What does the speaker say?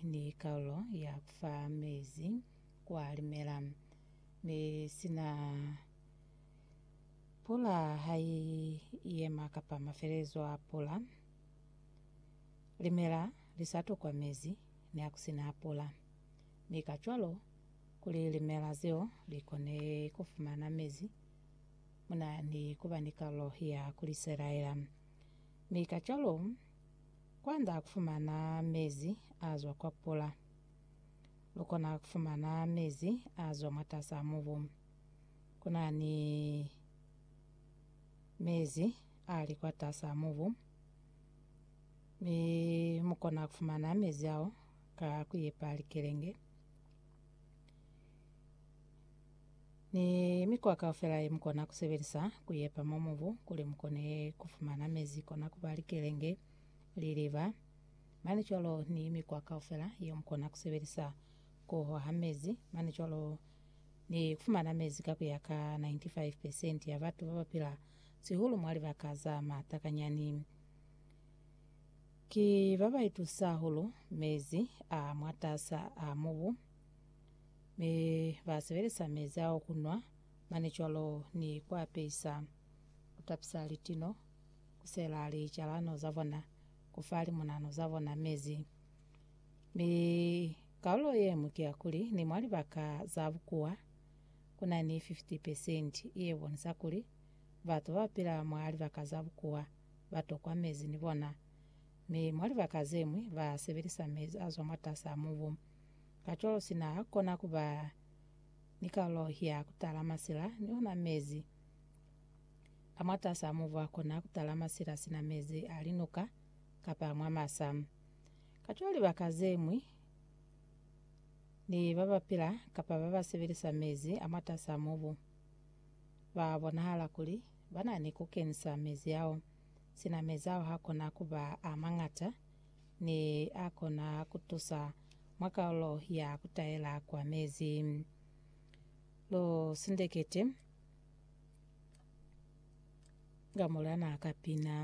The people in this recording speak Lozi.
ni kalulo ya fa mezi kwa limela, mi sina pula ha i yema kapa mafelelezo a pula, limela li sa tukwa mezi ni ha ku si na pula, mi kacwalo, kuli limela zeo li kone ku fumana mezi, mu na ni ku ba ni kalulo ya ku li selaela, mi kacwalo, Kwanda kufumana mezi azwa kwa pula. Lukona kufumana mezi azwa mwatasa mubu. Kuna ni mezi ali kwatasa mubu, mi mukona kufumana mezi ao ka kuipa likelenge. ni mikwa kaufela yemukona kusebelisa kuyepa mwa mubu kuli mukone kufumana mezi kona kuba likelenge, liliba, mane cwalo ni mikwa kaufela yeo mukona kusebelisa kuhoha mezi, mane cwalo ni kufumana mezi ka kuya ka 95 percent ya batu babapila sihulu mwa libaka za matakanyani. Ki babaitusa hahulu mezi a mwatasa a mubu. Mi ba sebelisa mezi ao ku nwa, mane cwalo ni ku apesa, ku tapisa litino, ku sela licalano za bona, ku fa limunano za bona mezi. Mi kaulo ye ñwi ki ya kuli, ni mwa libaka za bukuwa, ku na ni 50 pesenti ye bonisa kuli batu ba pila mwa libaka za bukuwa ba tokwa mezi ni bona. Mi mwa libaka ze ñwi ba sebelisa mezi a zwa mwatas'a mubu. Kacwalo sina ha kona ku ba ni kalulo ya ku tala masila ni ona mezi. Ka mwatas'a mubu ha kona ku tala masila sina mezi a linuka kapa mwa masa. Kacwalo libaka ze ñwi ni ba ba pila kapa ba ba sebelisa mezi a mwatas'a mubu ba bonahala kuli ba na ni ku kenisa mezi ao. Sina mezi ao ha kona ku ba a mañata ne a kona ku tusa mwa kaulo ya ku taela kwa mezi. Lu sindekete nga mulana ka pina.